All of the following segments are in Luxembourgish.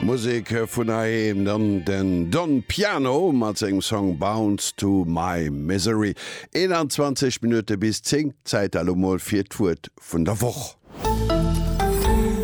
Musek vun heiheem, dann den Don Piano mat sengem Song Bounce to my misery. 21 Minutte bis 10, Zäit elo mol fir d'Wuert vun der Woch.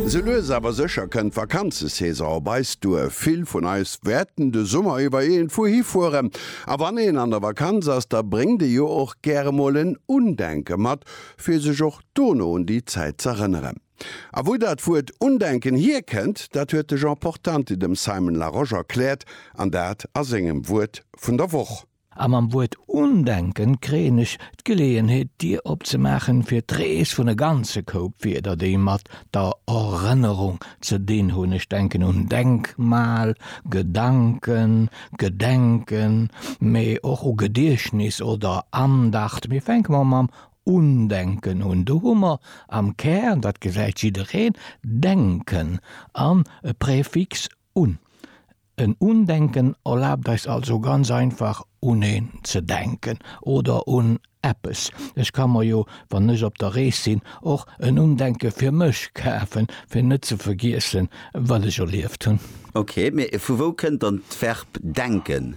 Sou lues awer sécher kënnt d'Vakanzesaison op eis duer. Vill vun eis wäerten de Summer iwwer iergendwou hifueren. A wann een an der Vakanz ass, da bréngt ee jo och gäre mol en Undenke mat, fir sech och dono un déi Zäit z'erënneren. A wou dat Wuert Undenken hierkennt, dat huet de Jean Portanti dem Simon Larosche erkläert, an dat a sengem Wuert vun der Woch. A mam Wuert Undenken kréien ech d'Geleeënheet, d'Dier opzemaachen fir d'Rees vun e ganze Koup Wierder, déi mat der Erënnerung ze dinn hunn. Ech denken un Denkmal, Gedanken, Gedenken, mee och u Gediechtnis oder Andacht. Mee fänke mer mam Undenken hunn. Do hu mer am Kär, dat gesäit jiddereen, denken an e Präfix un. En Undenken erlaabt eis also ganz einfach un een ze denken oder un eppes. Ech ka mer jo, wann ech op der Rees sinn, och en Undenke fir mech kafen, fir net ze vergiessen, wat ech erlieft hunn. Ok, mee vu wou kënnt dann d'Verb denken?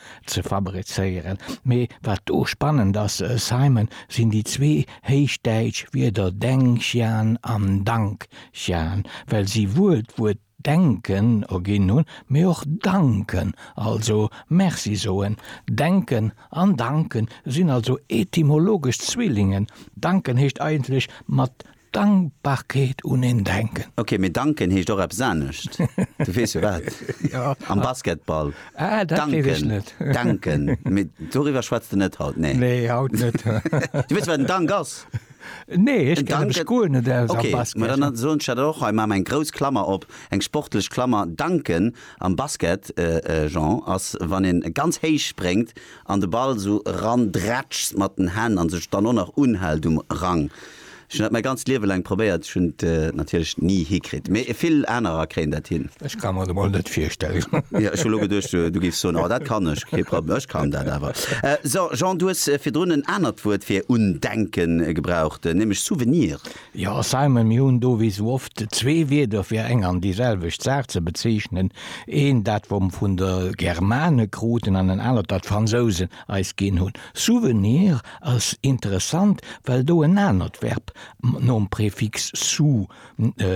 ze fabrizéieren, mee wat do spannend ass, Simon, sinn déi zwee héichdäitsch Wierder Dengxian an Dangxian, well si wuel d'Wuert denken erginn hunn, mee och danken, also Merci soen. Denken an danken sinn also etymologesch Zwillingen, danken heescht eigentlech mat Dankbarkeet un een denken. Ok, mee danken heescht och eppes anescht. Du weess jo wat? Jo. Am Basketball. Ah, dat weess ech net. Danken, danken. Mee doriwwer schwätz de net haut, nee? Nee, haut net. Du weess wat en Dank ass? Nee, ech kennen mech guer net aus am Basket. Ok, ma dann soen ech dat och hei, maache mer eng grouss Klammer op, eng sportlech Klammer. Danken am Basket, Jean, ass wann een ganz héich spréngt an de Ball esou erandrätschst mat den Hänn an sech dann och nach unhält um Rang. Ech hunn dat mäi ganzt Liewe laang probéiert, ech hunn et natierlech ni hikritt, mee vill anerer kréien dat hin. Ech ka mer et emol net virstellen. Jo, ech hu lo geduecht, du géifs soen, oh dat kann ech, kee Problem, ech kann dat awer. So, Jean, du hues virdrun en anert Wuert fir undenken gebraucht, nämlech Souvenir. Jo, Simon, mir hunn do wéi sou oft zwee Wierder fir eng an déi selwecht Saach ze bezeechnen, eent dat, wat mer vun de Germane kruten, an en anert, dat d'Fransousen eis ginn hunn. Souvenir ass interessant, well do en anert Verb nom Prefix sou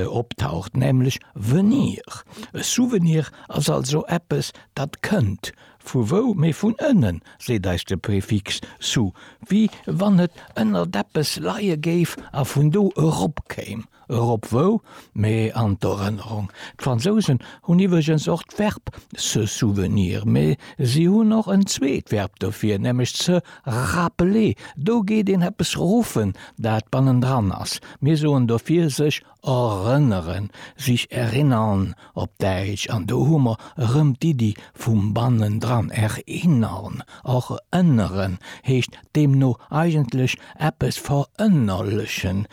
optaucht, nämlech venir. E Souvenir ass also eppes, dat kënnt. Vu wou? Mee vun ënnen, seet eis de Prefix sou, wéi wann et ënnert eppes leie géif a vun do eropkéim. Erop wou, mee an d'Erënnerung. D'Fransousen hunn iwwregens och d'Verb se souvenir, mee si hunn och en zweet Verb dofir, nämlech se rappeler. Do geet een eppes ruffen, dat bannendran ass. Mir soen dofir sech erënneren, sich erinnern op Däitsch, an do hu mer erëm d'Iddi vum bannendran. Erinnern, erënneren, heescht deemno eigentlech eppes verënnerlechen.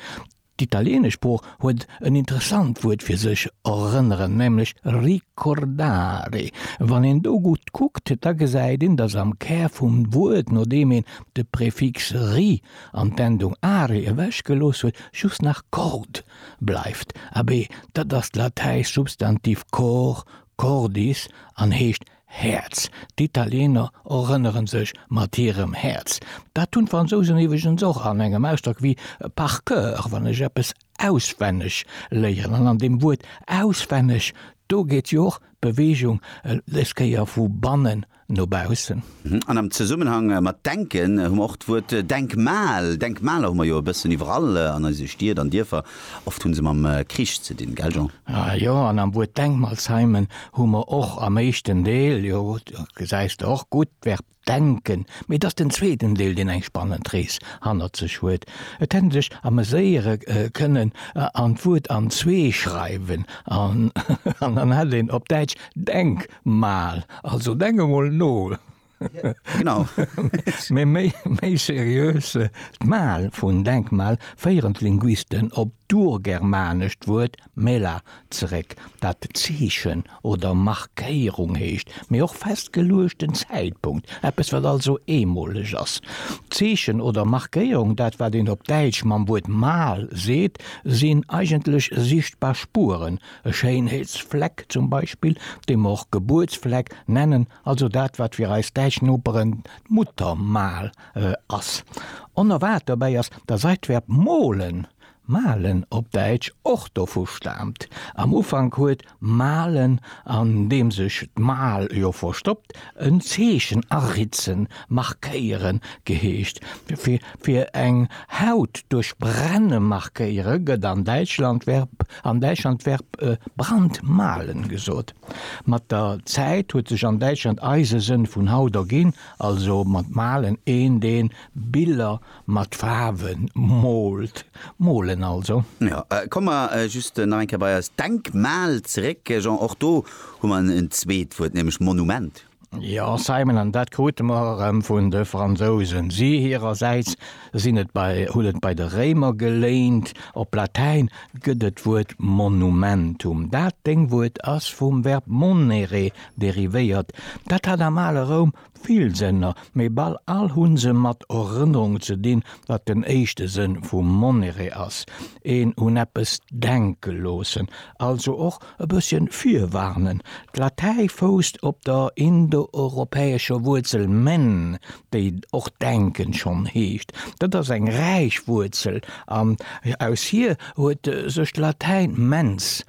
D'italieenesch Sprooch huet en interessant Wuert fir sech erënneren, nämlech ricordare. Wann een do gutt kuckt, da gesäit een, datt am Kär vum Wuert, nodeem een de Prefix ri an d'Endung are ewechgelooss huet, just nach cord bleift. Abee, dat ass d'latäischt Substantiv cor, cordis, an heescht Häerz, D'Italiener erënneren sech mat hirem Häerz. Dat hunn d'Fransousen iwweregens och an engem Ausdrock wéi par cœur, wann ech eppes auswenneg léieren. An an deem Wuert auswenneg, do geet jo och d'Beweegung des Kéier vu bannen no baussen. An am Zesummenhang mat denken hu mer och d'Wuert Denkmal. Denkmaler hu mer jo e bëssen iwwerall an eise Stied an Dierfer. Oft hunn se mam Krich ze dinn, gell Jean? Jo, an am Wuert Denkmalsheimen hu mer och am éischten Deel, jo, do gesäis de och gutt, d'Verb denken, mee et ass den zweeten Deel, deen eng spannend Rees hannert sech huet. Et hätt een sech ameséiere kënnen an d'Wuert an zwee schreiwen an dann hätt een op Däitsch Denkmal, also denk emol no. Genau. Mee méi seriös, d'Mal vun Denkmal féieren d'Linguisten op d'urgermanescht Wuert mela zeréck, dat Zeechen oder Markéierung heescht, mee och festgeluechten Zäitpunkt, eppes, wat also eemoleg ass. Zeechen oder Markéierung, dat, wat een op Däitsch mam Wuert Mal seet, sinn eigentlech sichtbar Spueren, e Schéinheetsfleck zum Beispill, dee mer och Gebuertsfleck nennen, Also dat, wat fir eis däitsch Noperen d'Muttermal ass. Onerwaart dobäi ass, datt eist d'Verb molen, malen op Däitsch, och dovu staamt. Am Ufank huet malen, an deem sech d'mal jo verstoppt, en Zeechen aritzen, markéieren, geheescht. Fir eng Haut duerch brenne markéiere gëtt an Däitschland d'Verb brandmalen gesot. Mat der Zäit huet sech an Däitschland eise Sënn vun haut erginn, also mat malen, een deen Biller mat Faarwen moolt, molen also. Jo, komme mer just nach eng Kéier bei eist Denkmal zeréck, Jean. Och do hu mer en zweet Wuert, nämlech Monument. Jo, Simon, an dat krute mer erëm vun de Fransousen. Si hirersäits sinn et bei, hunn et bei de Réimer geléint. Op Latäin gëtt et d'Wuert monumentum. Dat Deng Wuert ass vum Verb monere derivéiert. Dat hat am ale Roum vill Sënner, mee bal all hu se mat Erënnerung ze dinn, wat den éischte Sënn vu monere ass, een un eppes denke loossen. Also och E bësschen virwarnen, D'Latäi fousst op der indoeuropäescher Wuerzel men, déi och denken schonn heescht. Dat ass eng räich Wuerzel an aus hir huet sech d'Latäin mens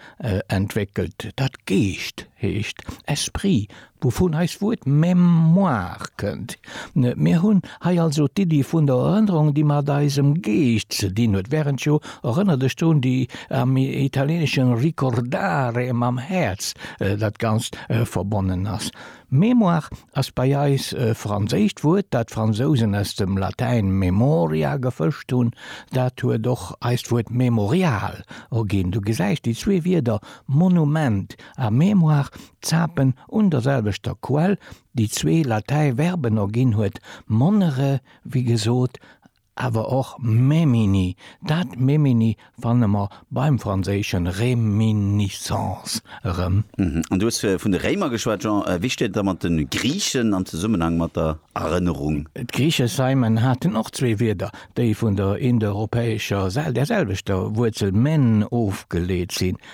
entwéckelt, dat Geescht heescht, esprit, Wouvun eist Wuert Mémoire kënnt. Mir hunn hei also d'Iddi vun der Erënnerung, déi mat eisem Geescht ze dinn huet, während jo Erënner dech drun, déi am Italieneschen ricordare mam Häerz dat Ganzt verbonnen ass. Mémoire ass bei eis e franséischt Wuert, dat d'Fransousen aus dem Latäin memoria gefëscht hunn. Dat huet och eist Wuert Mémorial erginn. Du gesäis, déi zwee Wierder Monument A mémoire zapen un der selwechter Quell, déi zwee latäi Verben erginn huet, monnere wéi gesot, awer och memini. Dat memini fanne mer beim franséische réminiscence erëm. An du hues vun de Réimer geschwat, Jean. Wéi steet et da mat de Griichen am Zesummenhang mat der Erënnerung? D'Griiche Simon haten och zwee Wierder, déi vun der indoeuropäescher, der selwechter Wuerzel men ofgeleet sinn.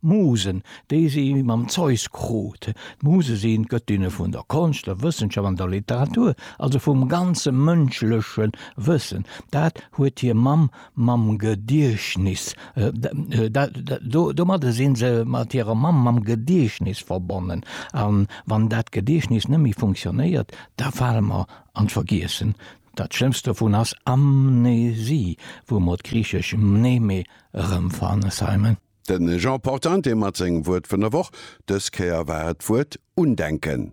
Musen, déi si mam Zeus krut. D'Muse sinn d'Gëttinne vun der Konscht, der Wëssenschaft an der Literatur, also vum ganze mënschleche Wëssen. Dat huet hir Mamm mam Gediechtnis, domadde si se mat hirer Mamm mam Gediechtnis verbonnen. A wann dat Gediechtnis net méi funktionéiert, da fale mer an d'Vergiessen. Dat schlëmmst dovun ass Amnesie, wou mer d'griichesch mneme erëmfannen, Simon. De Jean Portante mat sengem Wuert vun der Woch. Dës Kéier war et d'Wuert Undenken.